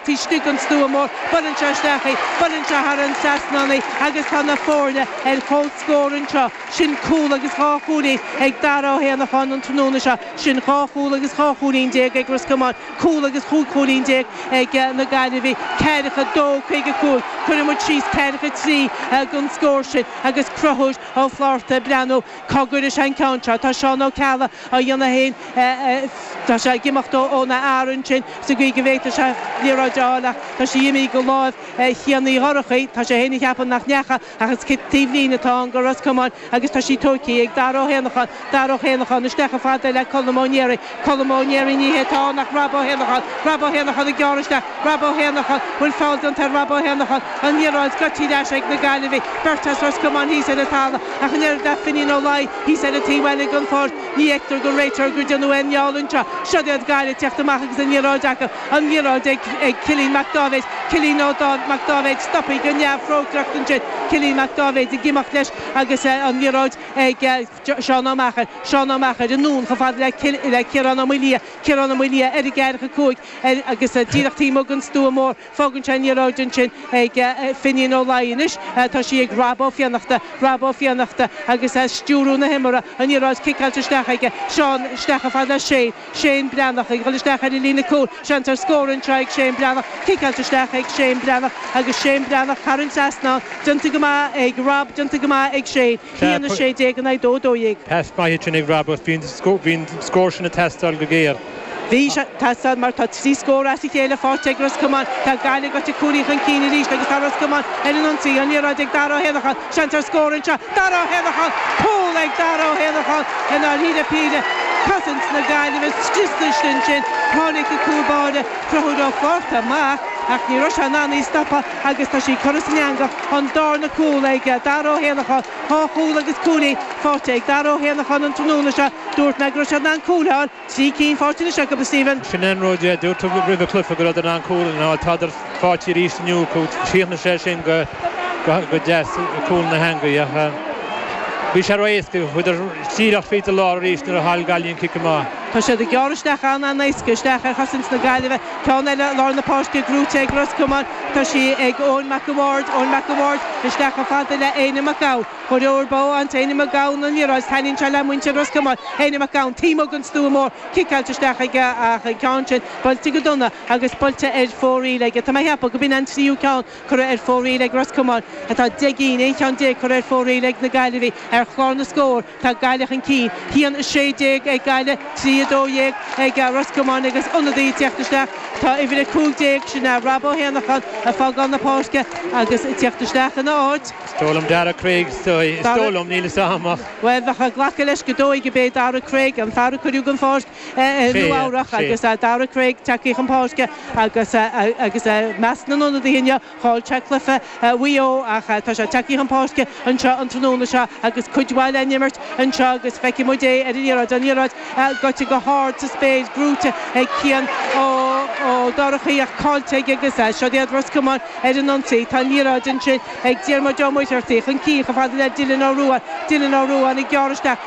Istigh den stua mór, buaileann sé isteach í, buaileann sé thar an trasnán í agus tá na foirne ar comhscór anseo. Sin cúl agus dhá chúilín ag Dara Ó hÉanacháin an tráthnóna seo. Sin dhá chúl agus dhá chúilín déag ag Ros Comáin, cúl agus chúig chúilín déag ag na Gaillimhigh. Ceathracha a dó, caoga a cúig. Cuirfidh muid síos ceathracha a trí don scór sin agus Conchúr Ó Flatharta ag breathnú. Cogar is ea an ceann seo. Tá Seán Ó Ceallaigh á dhéanamh féin, tá sé ag imeacht óna fhear ansin sa gcaoi go bhféadfadh sé liathróid a fháil ach tá sí imithe de láimh Chian Uí Dhorchaigh. Tá sé féin ag ceapadh nach ndeacha ach is cic taobh líne atá ann do Ros Comáin agus tá sí tógtha ag Dara Ó hÉanacháin. Dara Ó hÉanacháin isteach chomh fada le Colm Ó Néaraigh. Colm Ó Néaraigh, Ní hé atá ann ach Rob Ó hÉanacháin, Rob Ó hÉanacháin ag gearradh isteach, Rob Ó hÉanacháin, bhfuil feall déanta ar Rob Ó hÉanacháin, an liathróid scoite ar ais ag na Gaillimhigh, beirt as Ros Comáin thíos ar an talamh ach an oiread le Finín Ó Laoi thíos ar an taobh eile den pháirc. Ní fheictear don réiteoir gur déanadh aon fheall anseo. Seo'd iad Gaillimh ag teacht amach agus an liathróid acu, an liathróid ag ag Cillín Mac Dáibhéid, Cillín Ó Dá Mac Dáibhéid stoptha go neamhthrócaireach ansin, Cillín Mac Dáibhéid ag imeacht leis agus an liathróid ag. Seán Ó Meachair, Seán Ó Meachair, anonn chomh fada le Ciarán Ó Maolaodha, Ciarán Ó Maolaodha, ar an gceathracha cúig, ar, agus díreach taobh amuigh den Stua Mór, fágann sé an liathróid ansin ag Finín Ó Laoi anois, tá sí ag Rob Ó Fiannachta, Rob Ó Fiannachta agus é ag stiúrú na himeartha, an liathróid ciceáilte isteach aige, Seán, isteach chomh fada le Shane, Shane Breathnach, ag dhul isteach ar an líne cúil, seans ar scór anseo ag Shane Breathnach, ciceáilte isteach ag Shane Breathnach agus Shane Breathnach, thar an trasnán, déanta go maith ag Rob, déanta go maith ag Shane. 1, 16 in aghaidh 2, 12. Pas maith sin ag Robert. Bhí an scór sin ag teastáil go géar. Bhí sé ag teastáil mar tá trí scór as a chéile faighte ag Ros Comáin. Tá Gaillimh gaibhte cúilín chun cinn arís agus tá Ros Comáin ar an ionsaí. An liathróid ag Dara Ó hÉanacháin. Seans ar scór anseo. Dara Ó hÉanacháin! Cúl ag Dara Ó hÉanacháin i ndáiríre píre. Cosaint na Gaillimhe scriosta ansin. Tháinig an cúl báire, Conchúr Ó Flatharta, amach ach ní raibh sé in ann í stopadh agus tá sí curtha san eangach. an darna cúl ag Daire Ó hÉanacháin, dhá chúl agus cúilín faighte ag Daire Ó hÉanacháin an tráthnóna seo. Dúirt mé go raibh siad in ann cúil a fháil, trí cinn faighte anois acu, a Stephen. Sin an rud, a dúirt tú roimh an gcluiche, go rabhadar in ann cúl a fháil. Tádar faighte arís inniu acu. Chríochnaigh sé sin go deas, cúl na heangaí, ach bhí sé ró-éasca. Chuadar díreach fríd an lár arís nuair a chaill Gaillimh an cic amach. Tá siad ag gearradh isteach an-an-éasca isteach ar chosaint na Gaillimhe. Ceann eile i lár na páirce, gnóite ag Ros Comáin, tá sí ag Eoin Mac a' Bhaird, Eoin Mac a' Bhaird, isteach chomh fada le Éinne Mac Gabhann. Imreoir breá an tÉinne Mac Gabhann don liathróid, is taitníonn sé le muintir Ros Comáin. Éinne Mac Gabhann, taobh amuigh den stua mór, ciceáilte isteach aige ach an ceann sin buailte go dona agus buailte ar fóraoil aige. Tá mé a cheapadh go b'in an tríú ceann. curtha ar fóraoil ag Ros Comáin atá 10 gcinn, aon cheann déag curtha ar fóraoil ag na Gaillimhigh. Ar chlár na scór tá Gaillimh chun cinn, cúilín is 16 ag Gaillimh, 3, 12 ag Ros Comáin agus ionadaí ag teacht isteach. Tá uimhir 15, sin é Rob Ó hÉanacháin, ag fágáil na páirce agus ag teacht isteach ina áit. Is dóigh liom Darragh Craig, is dóigh, is dóigh liom, níl 'fhios a'm ach. Bhuel, bheadh ag glacadh leis go ndóigh gurb é Darragh Craig an fear a cuireadh den pháirc. Nua-Eabhrac agus Darragh Craig tagtha chun páirce agus agus i measc na n-ionadaithe inniu Paul Checkliffe Mhaigh Eo ach tá sé tagtha chun páirce anseo an tráthnóna seo agus cuid mhaith le n-imirt anseo agus feicfidh muid é ar an liathróid, an liathróid gaibhte go hard sa spéir, brúite ag Cian Ó Dorchaí ach caillte aige agus siúd iad Ros Comáin ar an ionsaí. Tá an liathróid ansin ag Diarmuid Ó Muircheartaigh chun cinn chomh fada le Dylan Ó Ruadháin, Dylan Ó Ruadháin ag gearradh isteach,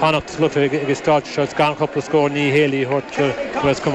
fanacht sa gcluiche ag Stáit Shuls gan chúpla scór, ní héalaí a thabhairt do Ros Comáin.